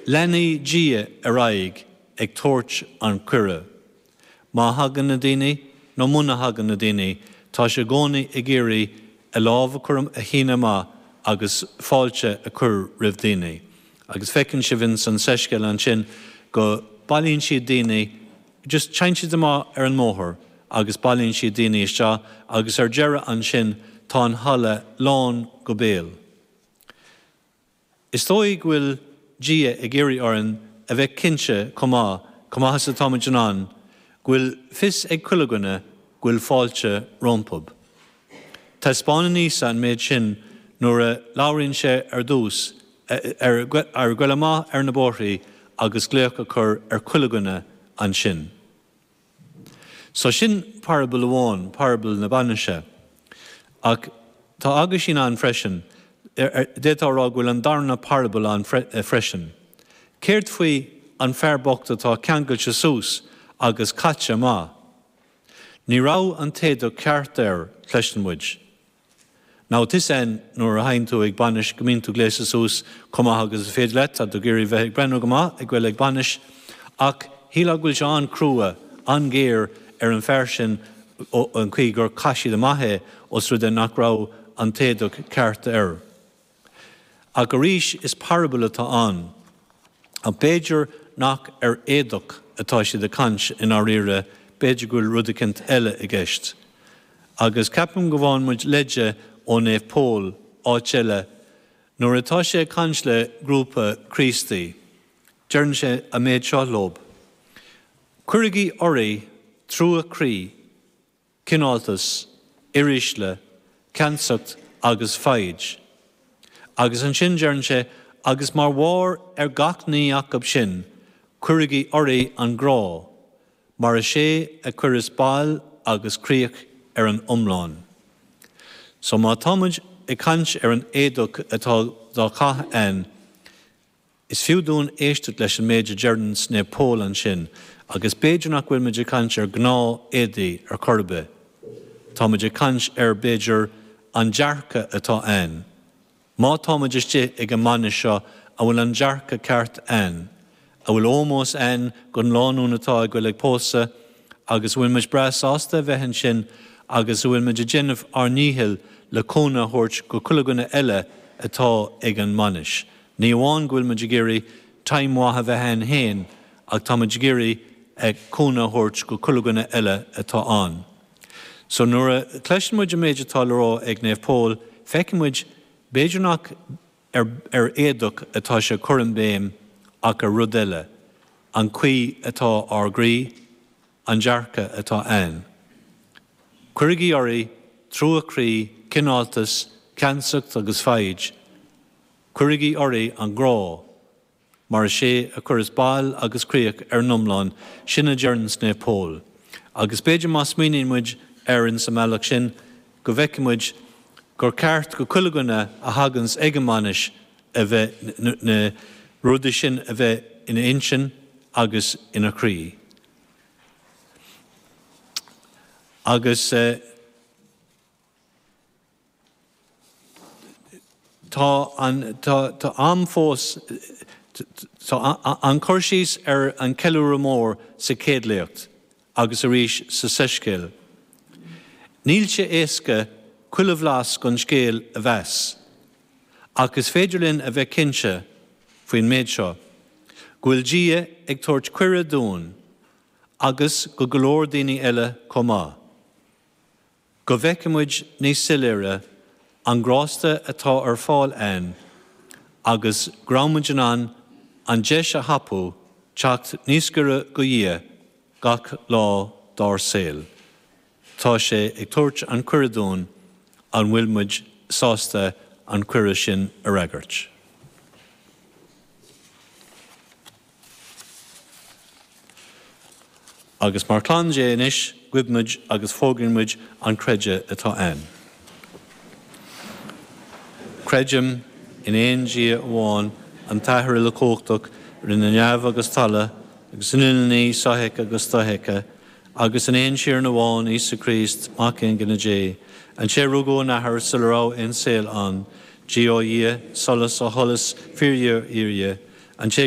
Leanfaidh Dia ar aghaidh ag tabhairt an cuireadh. Má thagann na daoine nó muna thagann na daoine, tá sé i gcónaí ag iarraidh a lámh a chur a shíneadh amach agus fáilte a chur roimh daoine. Agus feiceann sibh in san soiscéal ansin go bailíonn siad daoine, just téann siad amach ar an mbóthar agus bailíonn siad daoine isteach agus ar deireadh ansin tá an halla lán go béal. Is dóigh go bhfuil Dia ag iarraidh orainn a bheith cinnte chomh maith, chomh maith is atáimid in ann, go bhfuil fios ag chuile dhuine go bhfuil fáilte rompub. Taispeánann Íosa an méid sin nuair a labhraíonn sé ar dtús ar ghoil amach ar na bóithrí agus glaoch a chur ar chuile dhuine ansin. So sin parabal amháin, parabal na bainise. Ach tá aguisín ann freisin, d'fhéadfá a rá go bhfuil an darna parabal ann freisin. Céard faoin bhfear bocht atá ceangailte suas agus caite amach? Ní raibh an t-éadach ceart air, cloiseann muid. Now tá's a'ainn nuair a théann tú ag bainis go mbíonn tú gléasta suas chomh maith agus is féidir leat, tá tú ag iarraidh bheith ag breathnú go maith ag goil ag bainis ach shílfeá go bhfuil sé an-chrua, an-ghéar ar an fear sin an chaoi gur chaith siad amach é os rud é nach raibh an t-éadach ceart air. Ach arís is parabal atá ann. Ach b'fhéidir nach ar éadach atá siad ag caint i ndáiríre, b'fhéidir go bhfuil rud eicint eile i gceist. Agus ceapaim go bhfaigheann muid leide ó Naomh Pól áit eile nuair atá sé ag caint le grúpa Críostaí. Deireann sé an méid seo leob, Cuirigí oraibh trua croí. cineáltas, uirísle, ceansacht agus foighid. Agus ansin deireann sé, agus mar bharr ar gach ní acub sin cuirigí oraibh an grá, mar is é a chuireas bail agus críoch ar an iomlán. So má tá muid ag caint ar an éadach atá dá chaitheamh a'ainn, Is fiú dúinn éisteacht leis an méid a deireanns Naomh Pól ansin agus b'fhéidir nach bhfuil muid ag caint ar gnáth éadaí ar chor ar bith. Tá muid ag caint ar, b'fhéidir, an dearcadh atá a'ainn. Má tá muid istigh ag an mbainis seo, an bhfuil an dearcadh ceart a'ainn? An bhfuil ómós a'ainn gon lánúin atá ag goil ag pósadh agus an bhfuil muid breá sásta a bheith ansin agus an bhfuil muid ag déanamh ár ndícheall le cúnamh a thabhairt go chuile dhuine eile atá ag an mbainis? Ní amháin go bhfuil muid ag iarraidh time mhaith a bheith ainn féin ach tá muid ag iarraidh cúnamh a thabhairt go chuile dhuine eile atá ann. So nuair a chloiseann muid an méid atá le rá ag Naomh Pól feiceann muid b'fhéidir nach ar ar éadach atá sé ag cur an béim ach ar rud eile, an chaoi atá ár gcroí, an dearcadh atá ainn. Cuirigí oraibh trua croí, cineáltas, ceansacht agus foighid. Cuirigí oraibh an grá, mar is é a chuireas bail agus críoch ar an iomlán, sin a deireanns Naomh Pól. Agus b'fhéidir má smaoiníonn muid air ins an mbealach sin, go bhfeicfidh muid gur ceart go chuile dhuine a thaganns ag an mbainis a bheith, na rudaí sin a bheith ina intinn agus ina chroí. Agus. Tá an t-am fós ann cur síos ar an ceiliúradh mór sa chéad léacht agus arís sa soiscéal. Níl sé éasca chuile bhlas den scéal a mheas, ach is féidir linn a bheith cinnte faoin méid seo, go bhfuil Dia ag tabhairt cuireadh dúinn, agus go go leor daoine eile chomh maith, Go bhfeice muid níos soiléire an grásta atá ar fáil ann agus go raibh muid in ann an deis a thapú teacht níos gaire do Dhia gach lá dár saol, tá sé ag tabhairt an cuireadh dúinn an bhfuil muid sásta an cuireadh sin a fhreagairt? Agus mar chlann Dé anois guímid agus fógraíonn muid an creideamh atá ainn. Creidim in aon Dia amháin, an tAthair uilechumhachtach, rinne neamh agus talamh, agus an uile ní sofheicthe agus dofheicthe, agus in aon Tiarna amháin, Íosa Críost, Mac Aonghine Dé, an té a rugadh ón Athair sula raibh aon saol ann, Dia ó Dhia, solas ó sholas, fíordhia ó fhíordhia, an té a